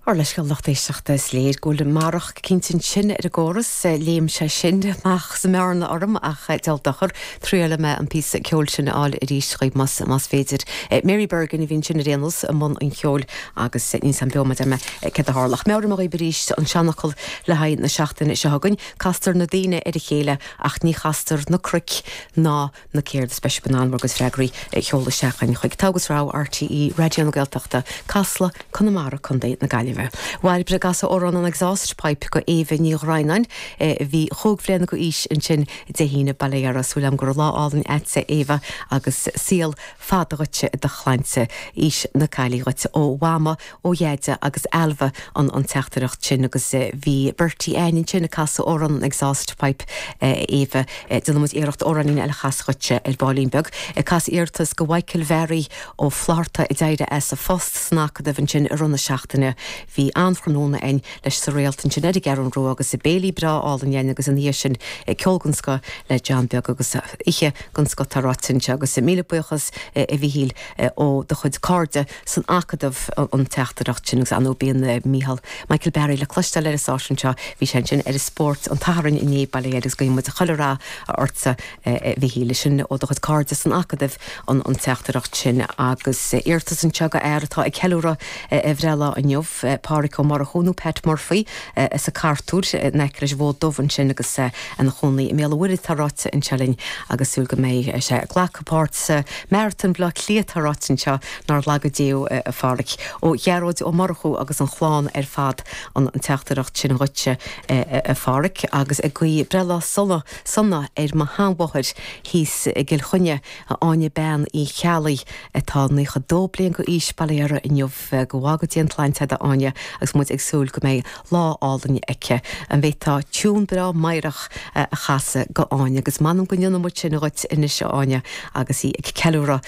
Ár leithscéal lucht éisteachta, is léir go bhfuil marach eicínt ansin ar an gcóras, léim sé sin amach sa mbearna orm ach diabhal dochar, triailfidh mé an píosa ceoil sin a fháil arís chugaibh más féidir. Mary Bergin a bhí ansin ar aon nós i mbun an cheoil agus níl a fhios agam beo mar a deir mé céard a tharla. Ach meabhróidh mé dhaoibh arís an seanfhocal le haghaidh na seachtaine seo chugainn, castar na daoine ar a chéile ach ní chastar na cnoic ná na Céard is Speis Ban Ann agus freagraí a sheoladh isteach chuig chuig Togha agus Rogha RTÉ Raidió na Gaeltachta, Casla, Conamara, Co na Gaillimhe. Bhuel b'fhéidir go gcasfá amhrán an Exhaust Pipe go Éabha Ní Dhroighneáin a bhí chúig bhliana go aois ansin Dé hAoine, bail ó Dhia uirthi agus súil agam go raibh lá álainn agat a Éabha agus saol fada dhuitse i do shláinte aois na caillí dhuit ó Mhama, ó Dheaide agus Ailbhe an an teachtaireacht sin agus bhí Bertie againn ansin ag casadh amhrán an Exhaust Pipe a Éabha déanfaidh muid iarracht amhráinín eile a chasadh dhuitse ar baillín beag agus iarratas go Mhichael Mhearaí Ó Flatharta a d'éirigh as a phost san Acadamh ansin i rith na seachtaine bhí an-thráthnóna again leis sa Réalt ansin ar an gCeathrún Rua agus béilí breá álainn again agus ina dhiaidh sin ceol den scoth le John Beag agus oíche den scoth atá ráite anseo agus míle buíochas a Mhichíl ó do chuid cairde. san Acadamh an teachtaireacht sin agus ar ndóigh bíonn Mícheál Michael Mhearaí le cloisteáil ar an stáisiún seo. Bhí sé ansin ar an spórt an tSathairn inné bail ó Dhia air agus guíonn muid chuile rath ortsa a Mhichíl. Sin ó do chuid cairde san Acadamh an teachtaireacht sin agus iarratas anseo go fhear atá ag ceiliúradh a bhreithlá inniu, Pádraic Ó Murchú nó Pat Murphy as Cartúr in aice leis an bhFód Dubh ansin agus ina chónaí i mBéal an Mhuirthead atá ráite anseo linn agus súil go mbeidh sé ag glacadh páirt sa maratón Bleá Cliath Tá ráite anseo nár laga Dia thú, a Pháraic, ó Ghearóid Ó Murchú agus an chlann ar fad an teachtaireacht sin dhuitse, a Pháraic, agus ag guí breithlá sona sona ar mo sheanmháthair thíos i gCill Chainnigh, Áine Bean Uí Cheallaigh, atá naocha dó bliain go aois bail ó Dhia uirthi inniu. Go bhfága Dia an tsláinte i bhfad ag Áine, agus muid ag súil go mbeidh lá álainn aici. An bhféadfá tiún breá meidhreach a chasadh go Áine, agus m'anam go ndéanfaidh muid sin dhuit anois, a Áine, agus í ag ceiliúradh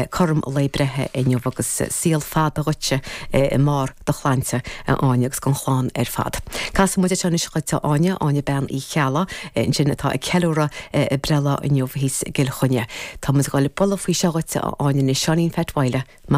cothrom lae breithe inniu, agus saol fada dhuitse i mbarr do shláinte, a Áine, agus don chlann ar fad. Casfaidh muid seo anois dhuit, a Áine, Áine Bean Uí Cheallaigh ansin atá ag ceiliúradh a breithlá inniu thíos i gCill Chainnigh. Tá muid ag dul a bualadh faoi seo dhuit, a Áine, anois. Seáinín Pheait Mhaoile, Mac.